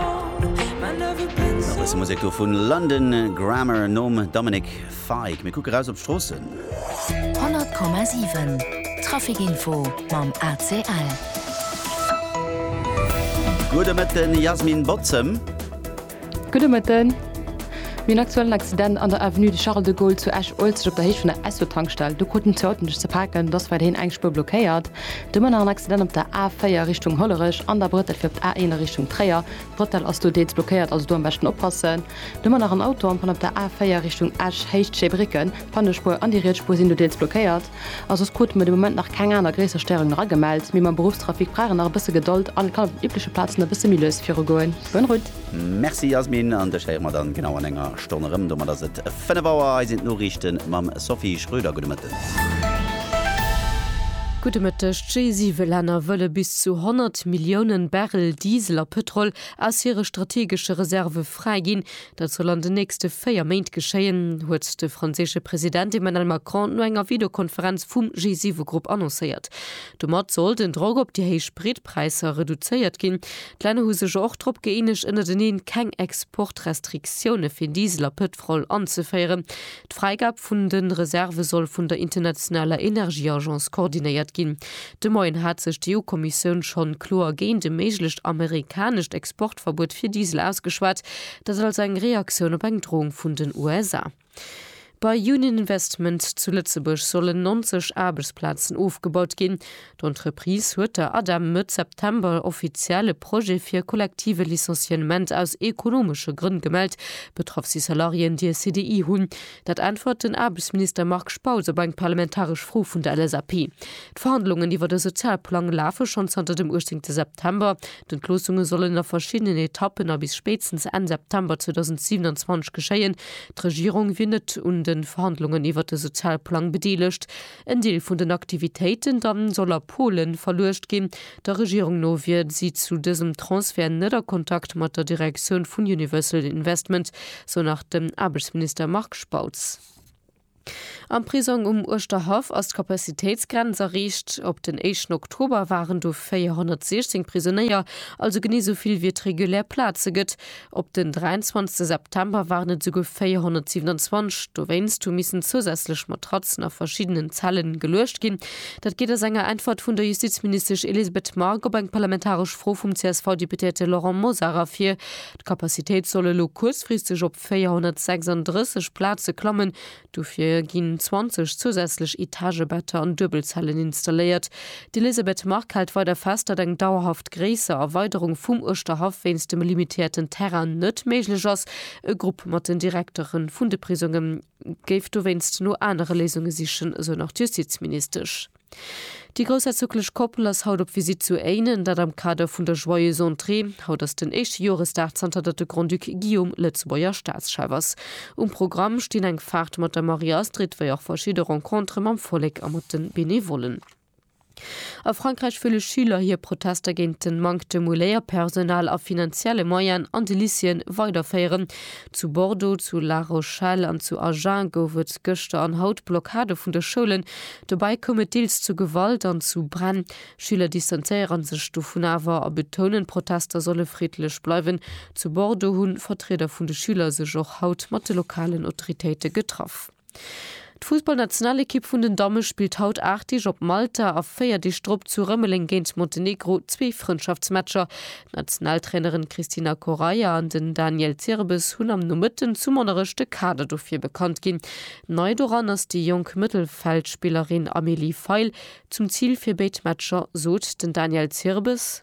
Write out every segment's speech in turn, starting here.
A bësse Musek do vun London Grammar nom Dominic Fike. Mir kucke raus op d'Stroossen. 100,7 Traficinfo mam ACL. Gudde Mëtten Jasmin Botzem. Gudde Mëtten. Mir hunn aktuell en Accident an der Avenue de Charles de Gaulle zu Esch-Uelzecht op der Héicht vun der Esso-Tankstell. Do kruten zwee Autoen sech ze paken, et ass weiderhin eng Spuer blockéiert. Du Mënner en Accident op der A4 Richtung Hollerech an der Brëttel fir op d'A1 a Richtung Tréier. D'Brëttel ass do deels blockéiert, also do am beschten oppassen. Du Mënner en Auto am Panne op der A4 Richtung Esch Héicht Scheebrécken. D'Pannespuer an déi riets Spuer sinn do deels blockéiert. A soss krute mer de Moment nach keng aner gréisser Stérungen eragemellt. Mee mam Beruffstrafic brauch een nach e bësse Gedold an et kann op den übleche Plazen e bësse méi lues virugoen. Bonne route! Merci Yasmin, an dech héiere mer dann genau an enger Stonn erëm. Domat ass et 5 Auer, hei sinn d'Noriichten mam Sophie Schröder. Gudde Mëtten. Gudde Mëtteg. D'G-7-Länner wëlle bis zu 100 Millioune Barrel Diesel a Pëtrol aus hire strategesche Reserve fräiginn. Dat soll an den nächste 4 Méint geschéien, huet de franséische President Emmanuel Macron no enger Videokonferenz vum G7-Grupp annoncéiert. Domat soll den Drock op déi héich Spritpräisser reduzéiert ginn. D'Länner hu sech jo och drop gëeenegt ënnerteneen, keng Exportrestriktioune fir Diesel a Pëtrol anzeféieren. D'Fräigab vun de Reserve soll vun der internationaler Energieagence koordinéiert ginn. De Moien hat sech d'EU-Kommissioun schonn kloer géint e méiglecht amerikanescht Exportverbuet fir Diesel ausgeschwat, dat als eng Reaktioun op eng Droung vun den USA. Bei Union Investment zu Lëtzebuerg sollen 90 Aarbechtsplazen ofgebaut ginn. D'Entreprise huet der ADEM Mëtt September offiziell e Projet fir e kollektive Licenciement aus ekonomesche Grënn gemellt. Betraff si Salariéen, déi e CDI hunn. Dat äntwert den Aarbechtsminister Marc Spautz op eng parlamentaresch Fro vun der LSAP. D'Verhandlungen iwwer e Sozialplang lafe schonn zanter dem 18 September. D'Entloossungen sollen a verschiddenen Etappen a bis spéitstens Enn September 2027 geschéien. D'Regierung wier net un de Verhandlungen iwwert de Sozialplang bedeelegt. En Deel vun den Aktivitéiten da soll a Polen verluecht ginn. Der Regierung no wier si zu dësem Transfert net a Kontakt mat der Direktioun vun Universal Investment, sou nach den Aarbechtsminister Marc Spautz. Am Prisong um Uerschterhaff ass d'Capacitéitsgrenz erreecht. Op den éischten Oktober waren do 416 Prisonéier, also genee esou vill wéi et regulär Plaze gëtt. Op den 23 September waren et esouguer 427. Dowéinst hu missen zousätzlech Matratzen a verschiddenen Zelle geluecht ginn. Dat geet aus enger Äntwert vun der Justizministesch Elisabeth Margue op eng parlamentaresch Fro vum CSV-Deputéierte Laurent Mosar ervir. D'Capacitéit soll elo kuerzfristeg op 436 Plaze klammen, dofir ginn 20 zousätzlech Etagebetter an Duebelzellen installéiert. D'Elisabeth Margue hält weider fest, datt eng dauerhaft gréisser Erweiderung vum Uerschterhaff wéinst dem limitéierten Terrain net méiglech ass. E Grupp mat den Direktere vun de Prisongen. géif dowéinst no anere Léisunge sichen, esou nach d'Justizministesch. Déi groussherzoglech Koppel ass haut op Visitt zu Éinen, dat am Kader vun der Joyeuse Entrée. Haut ass den éischte Joresdag zanter datt de Grand-Duc Guillaume Lëtzebuerger Staatschef ass. Um Programm stinn eng Faart mat der Marie-Astrid, wéi och verschidde Rencontere mam Vollek a mat de Benevollen. A Frankräich wëlle Schüler hir Protester géint den Manktem u Léierpersonal a finanzielle Moyen an de Lycéeën weiderféieren. Zu Bordeaux, zu La Rochelle an zu Agen gouf et gëschter an haut Blockade vun de Schoulen. Dobäi koum et deels zu Gewalt an zu Bränn. Schüler distanzéieren sech dovun awer a betounen, d'Protester solle friddlech bleiwen. Zu Bordeaux hunn Vertrieder vun de Schüler sech och haut mat de lokalen Autoritéite getraff. D'Fussballnationalekipp vun den Damme spillt haut 8 Deeg op Malta a 4 Deeg drop zu Rëmeleng géint Montenegro zwee Frëndschaftsmatcher. D'Nationaltrainerin Christina Correia an den Daniel Zirbes hunn am Nomëtten zu Monnerech de Kader dofir bekannt ginn. Nei doran ass déi jonk Mëttelfeldspillerin Amélie Feil. Zum Zil fir béid Matcher sot den Daniel Zirbes.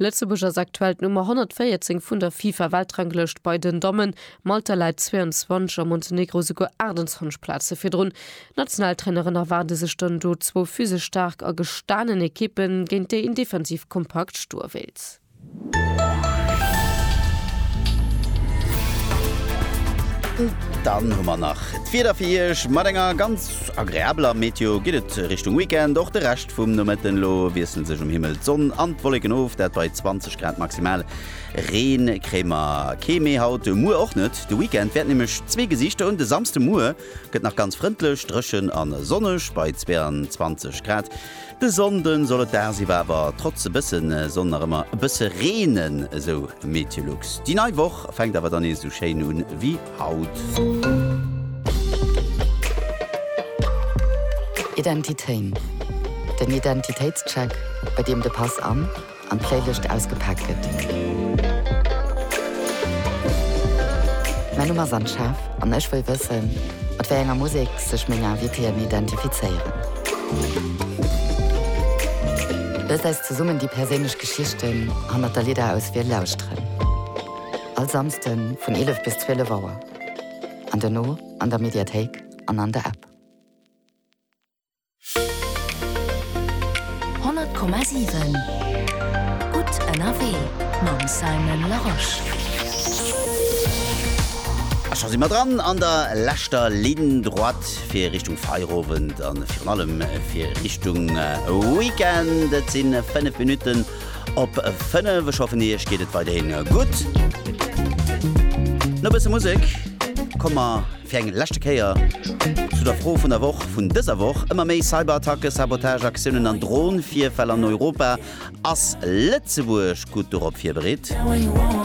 Lëtzebuerg ass aktuell d'Nummer 114 vun der FIFA-Weltranglëscht bei den Dammen. Malta läit 22 a Montenegro souguer 28 Plaze virdrun. D'Nationaltrainerin erwaarde sech dann do zwou physesch staark a gestanen Ekippen, géint déi een defensiv kompakt stoe wéilt. Dann hu mer nach d'Wieder fir Iech. Mat enger ganz agreabeler Meteo geet et Richtung Weekend. Och de Rescht. Vum Nomëtten elo wiessle sech um Himmel d'Sonn an d'Wolleken of, dat bei 20 Grad maximal. Reen kréie mer kee méi haut, muer och net. De Weekend wäert nämlech zwee Gesichter hunn, de Samsde muer gëtt nach ganz frëndlech, dréchen a sonneg bei 22 Grad. De Sonnde soll et dagsiwwer awer trotz e bësse Sonn nach ëmmer e bësse reenen, esou Meteolux. Déi nei Woch fänkt awer dann nees esou schéin un ewéi Haut. Identitéin, den Identitéitscheck, bei deem de Pass an an d'Playlëscht ausgepaakt gëtt. Mäin Numm ass Anne-Chef an ech wëll wëssen, mat wéi enger Musek sech meng Invitéen identifizéieren. Loost eis zesummen déi perséinlech Geschichten hannert der Lidderauswiel lauschteren. All Samsden vun 11 bis 12 Auer an dono an der Mediathéik an an der App. 100,7 Gutt ënnerwee mam Simon Larosche. A scho si mer dran an der leschter Ligne droite fir Richtung Feierowend a virun allem fir Richtung Weekend. Et si 5 Minutten Op 5, ech hoffen iech geet et weiderhin gutt. No e bësse Musek komme mer fir eng leschte Kéier zu der Fro vun der Woch vun dëser Woch. Ëmmer méi Cyberattacken, Sabotageaktiounen an Dronvirfäll an Europa. Ass Lëtzebuerg gutt dorop virbereet?